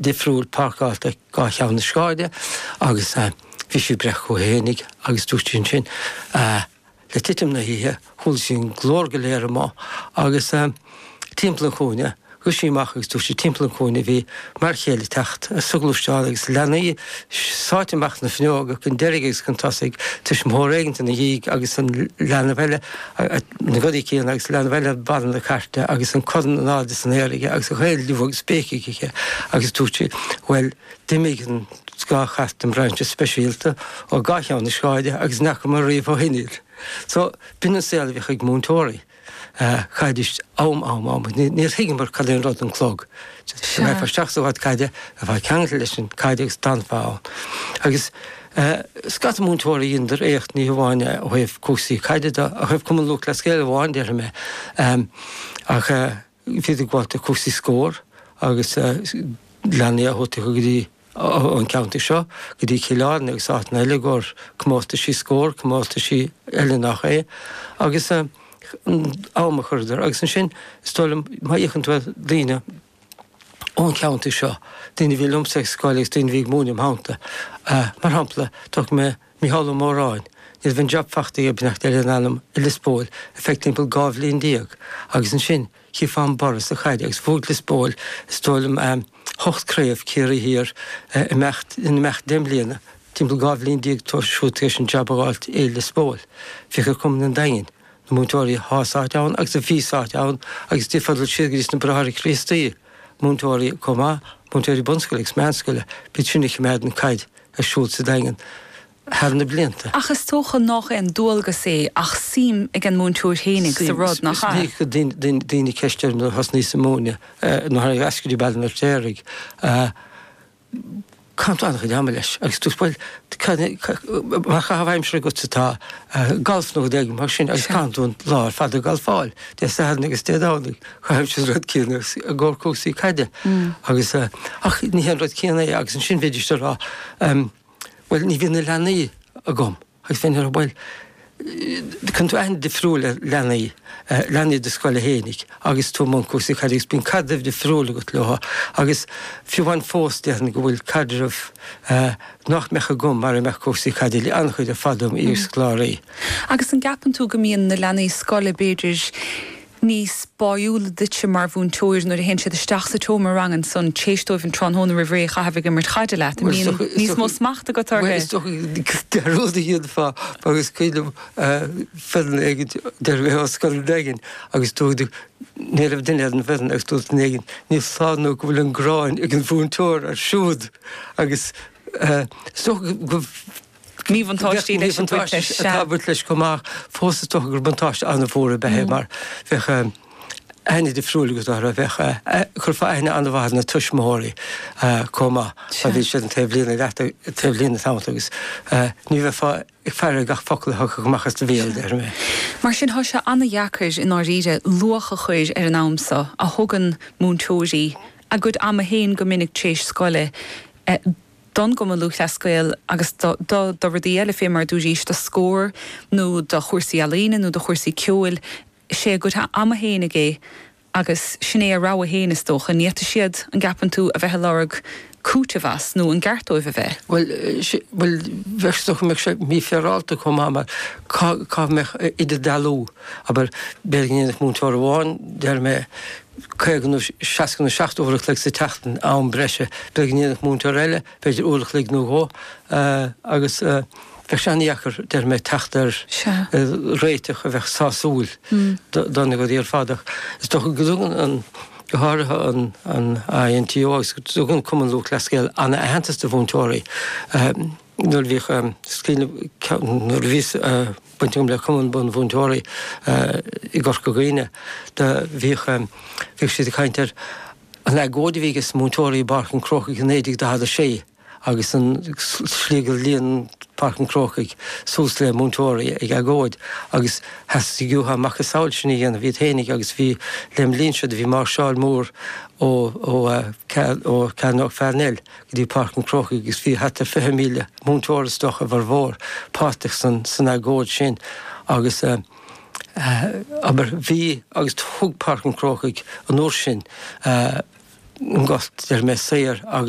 difriúil páirceálta dhá cheann na sráide agus bhí sí ag breith chuici fhéinig agus dúirt sí ansin le titim na hoíche chuala sí an glór go léir amuigh agus timpeall an chúinne. Rith sí amach agus dúirt sí timpeall an chúinne bhí m'fhear chéile ag teacht sa ghluaisteán agus leanaí sáite amach na fuinneoga chun deiridh agus chun tosaigh, tuismitheoir éigin ina dhiaidh agus an leanbh eile a na gadaí céanna agus leanbh eile ar barra na cairte agus an corn in airde san aer aige agus gach aon liú agus béic acu agus dúirt sí, bhuel, d'imigh an dá chairt den brainse speisialta ó gach cheann na sráide agus ní fhaca mé riamh ó shin iad. So, b'shin an saol a bhíodh ag múinteoirí. Caid is am am am, níor thuigeamar cad é an rud an clog. Sea. Bheifeá isteach sa ghort caide, bheifeá ceangailte leis an gcaid agus d'fhanfá ann. Agus. Tá scata múinteoirí dheineadar éacht, ní hamháin ó thaobh cúrsaí caide de, ach ó thaobh Cumann Lúthchleas Gael amháin, déarfaidh mé. Ach bhídís ag gabháilt do cúrsaí Scór agus leanaí a thabhairt go dtí an ceantar seo, go dtí Cill Airne agus áiteanna eile i gcomhair comórtaisí Scór, comórtaisí eile nach é, agus am a chuireadar. Agus ansin, is dóigh liom, má fhéachann tú ar daoine, ón cheantar seo, daoine a bhí liomsa ag scoil agus daoine a bhí ag múineadh im' theannta. Mar shampla, tógfaidh mé Micheál Ó Móráin. Ní raibh an job fachta aige, beannacht Dé lena anam i Lios Póil ar feadh timpeall dhá bhliain déag agus ansin chífeá an borradh sa chaid agus bhuaigh Lios Póil is dóigh liom ocht craobh Ciarraí Thiar in imeacht deich mbliana, timpeall dhá bhliain déag tar éis an job a fháilt i Lios Póil. Féach ar chumann an Daingin. Na múinteoirí athá sáite ann agus a bhí sáite ann agus fiú ag dul siar go dtí sna Bráithre Críostaí, múinteoirí chomh maith, múinteoirí bunscoile agus meánscoile, b'shin a chimeád an caid ar siúl sa Daingean thar na blianta. Ach is dócha nách aon dualgas é ach suim ag an múinteoir fhéinig sa rud, nach ea? Is minic a chuir daoine ceist orm nuair a thosnaíos ag múineadh, nó thar n-ais go dtí Baile an Fheirtéaraigh a. caitheann tú an-chuid ama leis agus dúrt bhuel mar chaitheamh aimsire agat atá galf nó rud éigin mar sin agus caitheann tú an lá ar fad ag galfáil. Dé Sathairn agus Dé Domhnaigh caithimse an rud céanna i gcomhair cúrsaí caide agus ach ní hé an rud céanna é agus ansin bhídís ag rá bhuel ní bhíonn na leanaí agam. Agus bhínn ag rá bhuel. Cuireann tú aithne difriúil ar leanaí, leanaí i do scoil fhéinig agus tú i mbun cúrsaí caide agus bíonn caidreamh difriúil agat leo agus fiú amháin fós déarfainn go bhfuil caidreamh nach mbeadh agam mara mbeadh cúrsaí caide, le an-chuid ar fad dem iar-scoláirí. Agus an gceapann tú go mbíonn na leanaí scoile b'fhéidir, níos báiúla duitse mar mhúinteoir nuair a théann siad isteach sa tseomra ranga ansan téis dóibh an tráthnóna roimh ré a chaitheamh ag imirt caide leat, an mbíonn níos mó smacht agat orthu? Bhuel is dócha gur rud a dhéanfá agus cuimhin liom foireann éigint deireadh bheith á scoil éigin agus dúirt ní raibh duine ar an bhfoirinn agus dúirt duine éigint ní foláir nó go bhfuil an ghráin ag an múinteoir air siúd agus is dócha go míbhuntáistí leis an gcuid leis, sea. Atá ag baint leis chomh maith ach fós is dócha gur buntáiste an-mhór ab ea é mar bheadh aithne difriúil agat orthu, bheadh, chuirfeá aithne an-mhaith ar na tuismitheoirí chomh maith mar bhí siad an taobhlíne leat, taobhlíne tamall agus ní bheifeá ag faire ar gach focal a thiocfadh amach as do bhéal, déarfaimis. Mar sin tá sé an-deacair i ndáiríre luach a chur ar an am seo a thugann múinteoirí dá gcuid ama féin go minic tar éis scoile don gCumann Lúthchleas Gael agus do do rudaí eile féin mar a dúraís, do scór nó do chúrsaí ealaíne nó do chúrsaí ceoil. Is é a gcuid ama féinig é agus sin é a rogha féin is dócha. Ní bhíonn siad an gceapann tú a bheith ag lorg cúiteamh as nó an ceart dóibh a bheith. Bhuel, bhuel, is dócha go mbeadh sé mífhéaráilte chomh maith mar cá, cá mbeadh idirdhealú, abair, b'fhéidir go ndéanfadh múinteoir amháin, déarfaimis, 50 nó 60 nó 70 uair an chloig sa tseachtain, am breise. B'fhéidir go ndéanfadh múinteoir eile, b'fhéidir uair an chloig nó dhó agus bheadh sé an-deacair, déarfaimis, teacht ar réiteach a bheadh sásúil do na grúpaí ar fad. Ach is dócha go dtugann an, go háirithe an INTO agus go dtugann Cumann Lúthchleas Gael an-aitheantas do mhúinteoirí. Nuair a bhíodh scoil, nuair a bhí baint agam le Cumann Bunmhúinteoirí i gCorca Dhuibhne, do bhíodh, bhíodh siad ag caint ar an agóid a bhí aige múinteoirí i bPáirc an Chrócaigh i 1946 agus an slí gur líon Páirc an Chrócaigh suas le múinteoirí ag agóid agus theastaigh uathu a macasamhail sin a dhéanamh iad féinig agus bhí, lem linn seo, do bhí máirseáil mór ó, ó, ó Chearnóg Pharnell. go dtí Páirc an Chrócaigh agus bhí thart ar 20,000 múinteoir is dócha a bhformhór páirteach san agóid sin agus abair bhí agus thug Páirc an Chrócaigh an uair sin an gcúirt déarfaimis saor agus